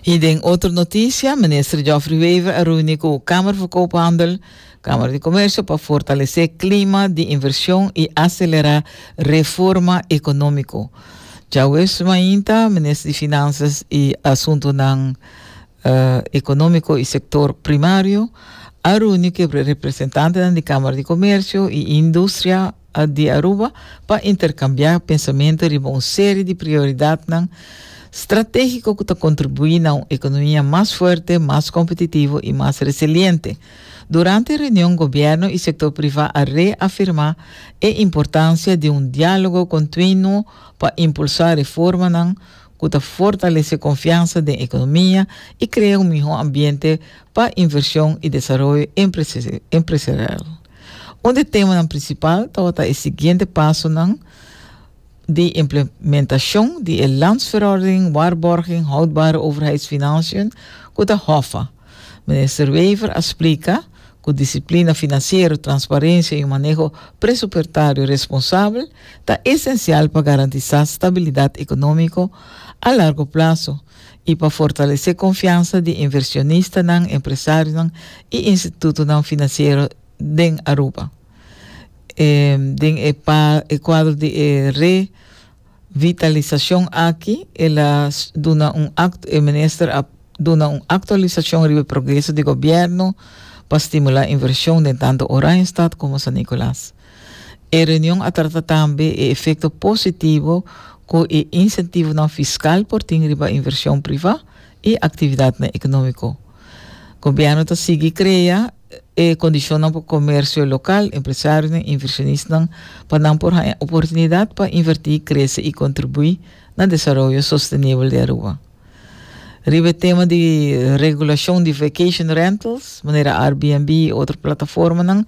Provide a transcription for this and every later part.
I den otro notisia, Minister Geoffrey Wever a reuni ku Kamer for Koophandel, Kamer di Komersio, pa fortalesé klima di invershon i aselerá reforma ekonómiko. Djaweves mainta, Minister di Finansias i Asuntunan Ekonómiko i Sektor Primario a reuni ku e representantenan di Kamer di Komersio i Industria, di Aruba pa interkambiá pensamentu riba un seri di prioridatnan stratéhiko ku ta kontribuí na un ekonomia mas fuerte, mas kompetitivo i mas resiliente. Durante e reunion gobièrnu i sektor privá a reafirmá e importansia di un diálogo kontinuo pa impulsá reformanan ku ta fortalesé konfiansa den ekonomia i krea un mihó ambiente pa invershon i desaroyo empresarial. Un di temanan prinsipal tabata e siguiente pasonan di implementashon di e Landsverordening Waarborging Houdbare Overheidsfinanciën ku ta HOFA. Minister Wever a splika ku disiplina finansiero, transparensia i un maneho presupuertario responsabel ta esensial pa garantisá stabilidat ekonómiko a largo plaso i pa fortalesé konfiansa di invershonistanan, empresarionan i institutonan finansiero den Aruba. E den e pa e kuadro di e re vitalisashon aki el a duna un aktu e minister a duna un aktualisashon riba e progreso di gobièrnu pa stimulá invershon den tantu Oranjestad komo San Nicolas. E reunion a trata tambe e efecto positivo cu e incentivonan fiscal por tin riba inversion priva y actividadnan economico. Gobierno ta sigui crea e condicionnan pa comercio local, empresarionan, inversionisnan pa nan por haña oportunidad pa inverti, crece y contribui na desaroyo sostenibel di Aruba. Riba e tema di regulashon di vacation rentals, manera Airbnb i otro plataformanan,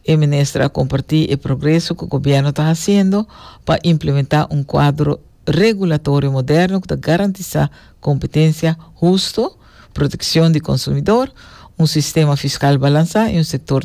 e minister a kompartí e progreso ku gobièrnu ta hasiendo pa implementá un kuadro regulatorio moderno ku ta garantisá kompetensia husto, protekshon di konsumidor, un sistema fiskal balansá i un sektor